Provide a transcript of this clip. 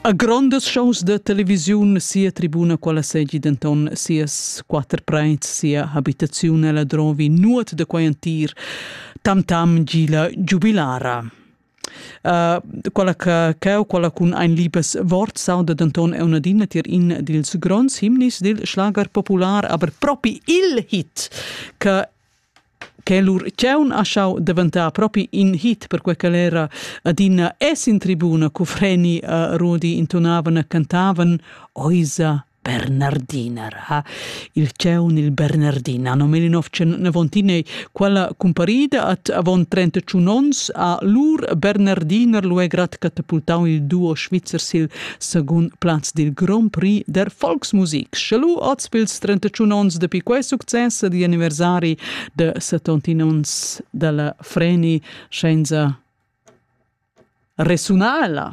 A grondas shows da televisiun sia tribuna quella segi denton sias quater preits, sia habitaziun ella drovi nuot da quei entir tam tam gila giubilara. Uh, quella che cheu quella cun ein libes wort sauda denton è una dina tier in dils gronds himnis dil schlager popular aber propi il hit che che lur tgaun ha schau daventar propi in hit perquei che era adina es in tribuna cu Freni a Rudi intonavan e cantavan Oisa Bernardiner ha il tgaun il Bernardin anno 1999 quella comparida at avon 31 ons a lur Bernardiner lu è grad catapultau il duo svizzer sil Secund plaz dil Grand Prix der Volksmusik. Schelu oz pils 31 onns dapi quei success di anniversari de 70 onns dalla Freni scienza resunala.